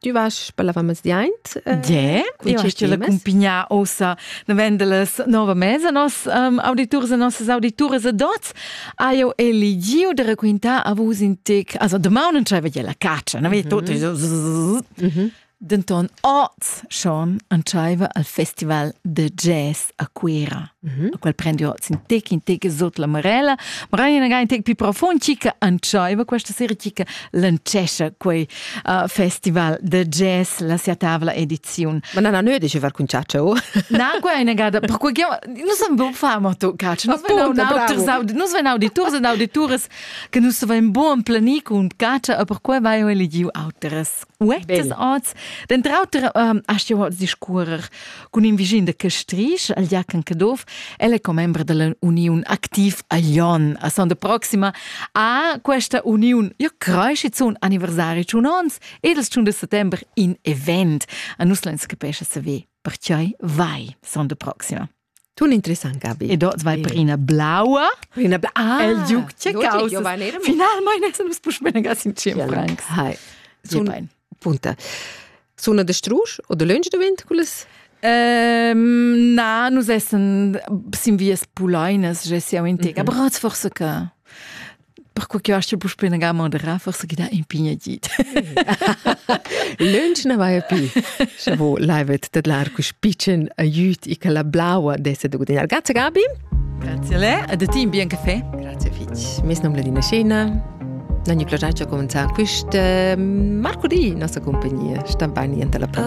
Tu vas spellavamezdi aint? Ie, io hai la cumpignia ossa vendeles nova mesa nos um, auditurs e nossas audituras ed oz ha io eligiu de raquintar a vus in tec, also domani non c'aveva la caccia, no? Mm -hmm. Denton oz schon entschaiva al festival de jazz a Cuera, mm -hmm. a qual prendio in tec in tec sot la marella, ma era in tec più profond chica antschaiva questa sera chica lancescia quei uh, festival de jazz la sia tavla edizion. Ma non hanno dice far conciaccia o? Na, qua è negata, per cui non san bo far ma tu caccia, non vengono auters non vengono auditors ed auditores che non saven buon plani con caccia e per cui vai eligiu auteres Uettas Den Trauter ähm, hast du discurrer cun in vischin de Castrisch, al Jacan Caduff, el è commembre della Union Activ Alion. A son de proxima a questa union io creisci zun anniversari un ons ed il 1 de settembre in event. A nus l'ens capesce se ve, percioi vai son de proxima. Tun interessant, Gabi. E dort vai per ina blaua. Per ina blaua. Ah, el giuc ce causa. Final mai ne sun spus benegas in cem francs. Hai. Sun punta. Suna de strusch oder lönch de wind cules? Um, na, nus essen sin vias pulainas, je siamo in tega. Mhm. Brat forse che. Perquai che astga puspè nagar moderar, forse che dà in pignadit. Lunch na vai più. Scha vo laivet tedlar cus picen aiut e che la blaua desse de gudagnare. Grazie Gabi. Grazie a lei e de ti in bien caffè. Grazie fitch. Mes nom Ladina Scena. Non mi piace cominciare quest marcudì nostra compagnia. Sta bene ante la